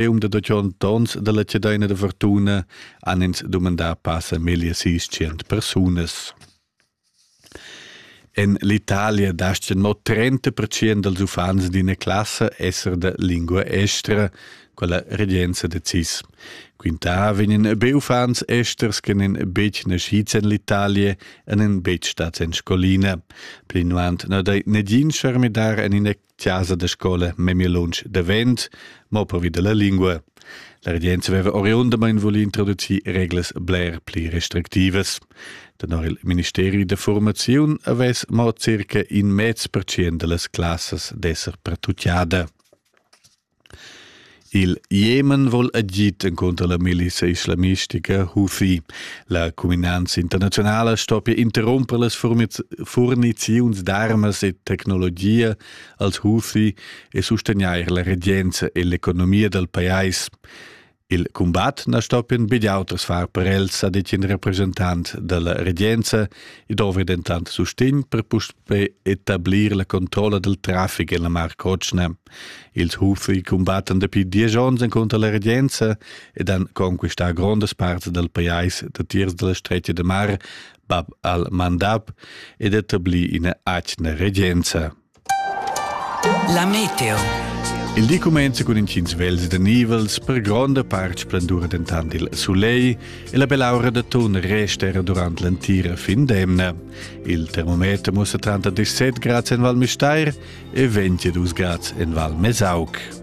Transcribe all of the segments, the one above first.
E um da da tschont ons dalla cedeina da fortuna han ins dumandà passa meglio sis cent persunas. En l'Italia dascha no 30% dals uffants d'ina classa esser de lingua estra, quella regenza decis. Quinta vegnan be uffants esters che nen betg nascids en l'Italia e nen betg stats en scolina. Pli nuant no dai negin charmidar en ina chasa da scola memia lunsch davent, mo pervi della lingua. La regenza aveva oriundamain voli introducir reglas bler pli restrictivas. Tenor il Ministeri da formaziun avess mo circa in mez percent delle classes d'esser pretucciada. Il Jemen vol agid encunter la milisa islamistica Houthi. La cuminanza internazionala stoppia interrumper las furniziuns d'armas e tecnologia als Houthi e sustegnair la regenza e l'economia dal pajais. Il cumbat na stoppien be auters far per els, ha dit in representant dalla regenza. I dovri dentant sustegn per puspei etablir la controlla del traffic en la Mar Cotschna. Ils hufi cumbattan dapi diesch onns encunter la regenza ed han conquistà grondas parts dal pajais datiers dalla stretga de mar Bab al-Mandab ed etablì ina atgna regenza. La meteo. Il di cumenza cun intgins vels da nivels, per gronda part splendura dentant il sulegl e la bell'aura d'atun resta era durant l'entira fin d'emna. Il termometer mussa 37 grads en Val Müstair e 22 grads en Val Mesauc.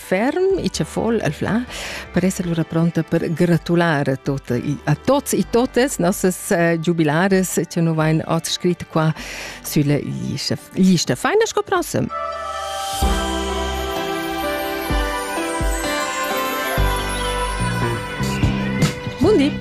ferm e che vol el fla per essere lura pronta per gratulare tot, a tots e totes nossas uh, jubilares che nu vain oz scrit qua sulle liste. Liste feine sco prossem. Bundi!